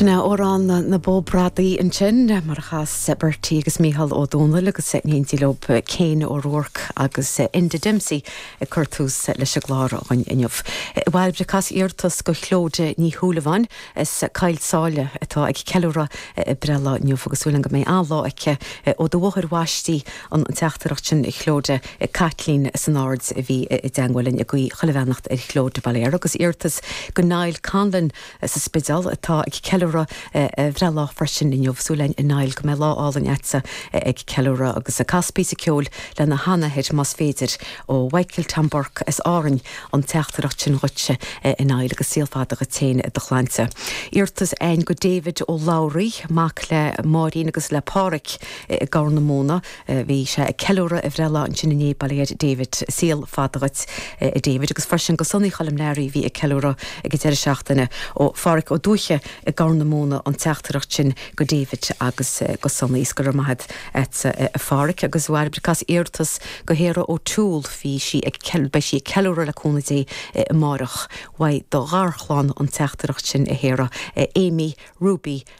Sin é amhrán na Bó Bradaí ansin, mar a chas Bertie agus Micheál Ó Dónaill agus in éindí leob Kane O'Rourke agus Enda Dempsey ag cur tús leis an gclár againn inniu. A Bhairbre cas iarratas go Chlodagh Ní Shúilleabháin as Caill tSáile atá ag ceiliúradh a breithlá inniu agus súil a'm go mbeidh an-lá aici ó do mháthair bhaistí an teachtaireacht sin a Chlodagh ag Caitlín san Aird a bhí i dteangmháil linn ag guí chuile bheannacht ar Chlodagh bail ó Dhia uirthi agus iarratas go Niall Conlon sa Spidéal atá ag ceiliúradh a bhreithlá freisin inniu. Súil againn a Niall go mbeidh lá álainn agatsa ag ceiliúradh agus cas píosa ceoil lena sheanathair más féidir ó Mhichael Tom Burke as Árainn an teachtaireacht sin dhuitse a Niall agus saol fada dhuit féin i do shláinte. Iarratas againn go David Ó Labhraí, mac le Máirín agus le Páraic, i gCorr na Móna. Bhí sé ag ceiliúradh a bhreithlá ansin inné bail ó Dhia ar David, saol fada dhuit a David, agus freisin go Sonaí Choilm Learaí a bhí ag ceiliúradh ag an deireadh seachtaine. Ó Pháraic Ó Dúithche i gCorr na Móna an teachtaireacht sin go David agus go Sonaí. Is go raibh maith a't a Pháraic agus a Bhairbre cas iarratas go Sharah O'Toole bhí sí ag beidh sí ag ceiliúradh le cúnamh Dé amárach. Uaidh do gharchlann an teachtaireacht sin a Sharah, a Amy, Ruby,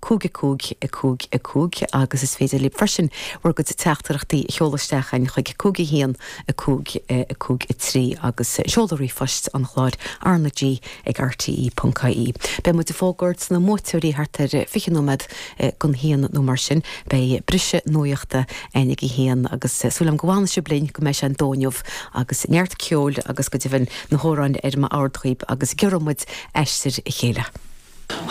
5 5 5 5 agus is féidir libh freisin bhur gcuid teachtaireachtaí a sheoladh isteach againn chuig 5 1 5 5 3 agus seoladh ríomhphoist an chláir, RnaG ag RTÉ.ie. Beidh muid ag fógairt na mbuaiteoirí thart ar 20 nóiméad go 1 nó mar sin. Beidh briseadh nuachta ann ag a haon agus súil agam go bhfanfaidh sibh linn go mbeidh sé an dó inniu agus neart ceoil agus go deimhin na hamhráin ar bord dhaoibh agus giorróidh muid aistear a chéile.